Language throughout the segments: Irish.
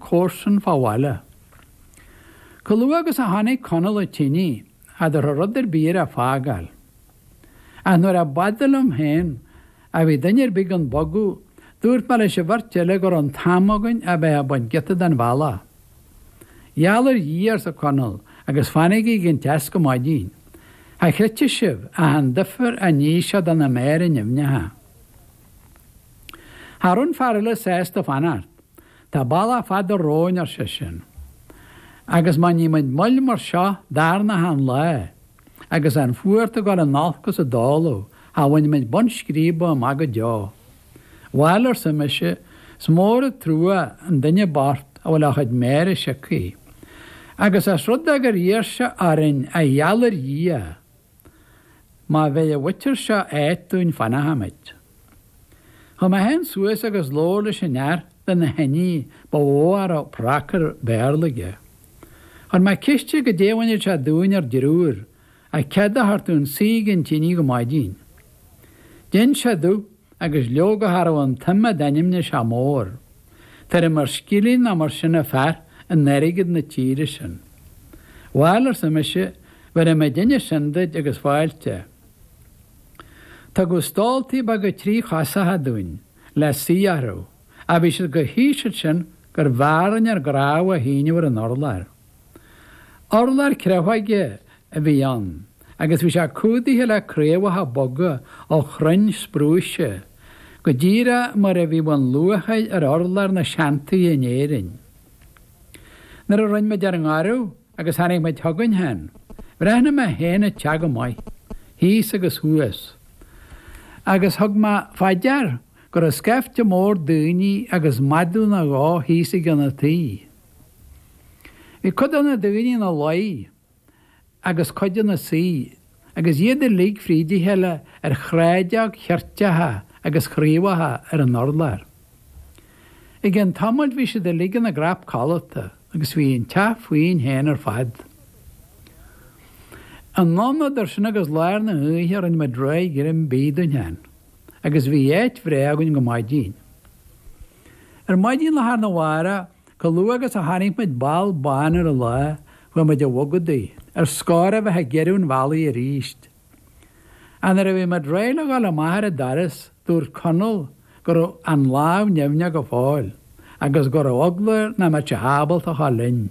comharsan fá bhaile. Chomh luath agus a tháinig Conall chun tine cha dtabharfadh rud ar bith air a fágáil. Ach nuair a b'fhada liom féin a bhí duine ar bith gan bogadh, dúirt mé leis an bheirt eile go raibh an t-am againn a bheith ag baint giota den bhealach. Gheall ar Dhia, arsa Conall, agus fanaigí ag an teas go maidin. Cha chreidfeadh sibh ach an difear a ní sé do na méara nimhneacha. Cha raibh an fear eile sásta fanacht. Tá bealach fada romhainn, ar seisean, agus má ní muid moill mar seo darna achan lá agus an fuacht ag dul in olcas i dtólamh cha bhainfimid bun scríbe amach go deo. Bhail, arsa mise, is mór an trua an duine bocht a bhfuil a chuid méara siocaithe. Agus ós rud é gur iarr sé orainn a gheall ar Dhia, Má bheir an mhuintir seo áit dúinn fanfaimid. Chuaigh mé féin suas agus labhair leis an fhear de na hIndiaigh ba mhó a raibh prácar Béarla aige. Chuir mé ceist air goidé a bhainfeadh sé dínn ár dtriúr ach cead a thabhairt dúinn suí ag an tine go maidin. D'inis sé domh agus leoga cha raibh an tsuim a d'ainmnigh sé mór. Tuairim ar scilling nó mar sin an fear in airgead na tíre sin. Bhail, arsa mise, bhéarfaidh muidinne sin duid agus fáilte. Tugadh stóltaí beaga trí chosacha dúinn le suí orthu ach bhí siad chomh híseal sin gurbh fhearr linn ár gcnámha a shíneadh ar an urlár. Urlár créafóige a bhí ann agus bhí sé cumhdaithe le craobhacha boga ó chrainn sprúise, go díreach mar a bhíodh an luachair ar urlár na seantithe in Éirinn. Nuair a rinne muid ár ngoradh agus tháinig muid chugainn féin, bhreathnaigh mé féin an teach go maith, thíos agus thuas, agus thug mé fá dear go raibh scaifte mór daoine agus madadh nó dhó thíos i gcionn an tighe. Bhí cuid de na daoine ina luí agus cuid ina suí agus iad uilig fríd a chéile ar shráideog cheirteacha agus chraobhacha ar an urlár. I gceann tamaill bhí siad uilig ina gcnap codlata agus bhí an teach fúinn féin ar fad. Anonn idir sin agus lár na h-oíche rinne muid réidh greim bídh dúinn féin. agus bhí áit bhreá againn go maidin. Ar maidin lá arna mhárach, chomh luath agus a tháinig muid ball bán ar an lá, bhí muid ag bogadaigh, ar scor a bheith ag giorrú an bhealaigh aríst. Ach nuair a bhí muid réidh le dhul amach ar an doras, dúirt Conall go raibh an lámh nimhneach go fóill, agus go raibh eagla air nach mbeadh sé ábalta a ghabháil linn.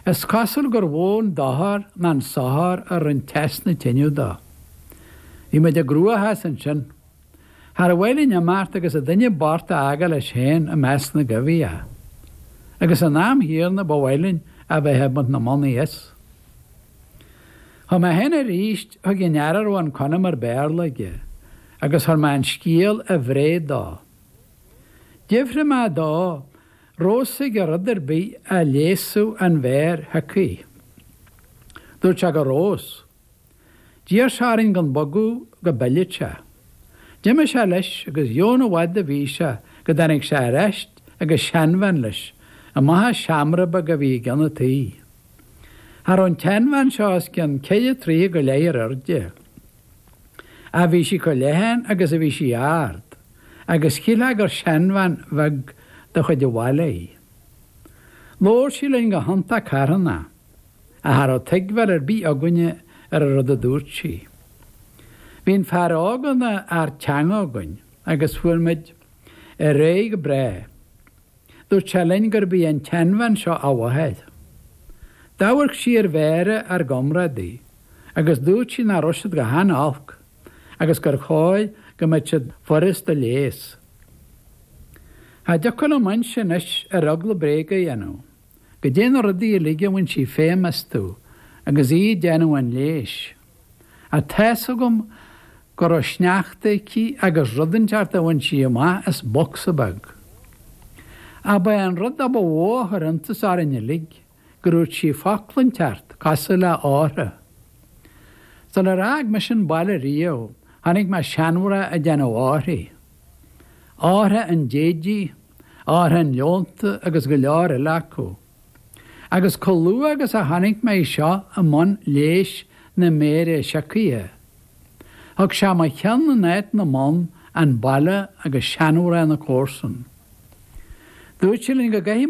Is cosúil gur mhó an dochar ná an sochar a rinne teas na tineadh dó. Bhí muid i gcruachás ansin. Char mhaith linn imeacht agus an duine bocht a fhágáil leis féin i measc na gcoimhthíoch. Agus san am chéanna ba mhaith linn a bheith ag baint na mbonnaí as. Chuaigh mé féin arís chuig an fhear a raibh an conamar Béarla aige agus chuir mé an scéal i bhfáth dó. D'fhiafraigh mé dó Raibh a fhios aige ar rud ar bith a leigheasfadh an mhéar shiocaithe. Dúirt sé go raibh a fhios. D'iarr sé orainn gan bogadh go bpillfeadh sé. D'imigh sé leis agus chan i bhfad a bhí sé go dtáinig sé ar ais agus seanbhean leis, amach as seomra beag a bhí i gcionn an tí. Cha raibh an tseanbhean seo os cionn ceithre troithe go leith ar airde. Ach bhí sí chomh leathan agus a bhí sí ard, agus shilfeá gur seanbhean bheag de chuid an bhaile í. Labhair sí linn go hiontach carthana, ach cha raibh tuigbheáil ar bith againne ar an rud a dúirt sí. Bhí an fear óg ina fhear teanga againn, agus fuair muid ar aghaidh go breá. Dúirt sé linn gurb í an tseanbhean seo a mháthair. D'amharc sí ar mhéara ár gcomrádaí, agus dúirt sí nach raibh siad go han-olc agus gur chóir go mbeadh siad furast a leigheas. Cha dtiocfadh liom inse anois ar eagla bréag a dhéanamh caidé na rudaí uilig a bhain sí feidhm astu agus í ag déanamh an leighis. Tá a fhios agam go raibh sneachta aici agus rud inteacht a bhain sí amach as bocsa beag. Ach ba é an rud ab mhó a chuir iontas orainn uilig gur dhúirt sí focla inteacht cosúil le hortha. Sular fhág mise an baile riamh chonaic mé seanmhná ag déanamh orthaí. Ortha an déididh, ortha an leonta agus go leor eile acu. agus chomh luath agus a chonaic mé í seo i mbun leigheas na méire siocaithe, thug sé i mo cheann in áit na mbonn an baile agus seanmhná na comharsan. Dúirt sé linn go gcaithfidh.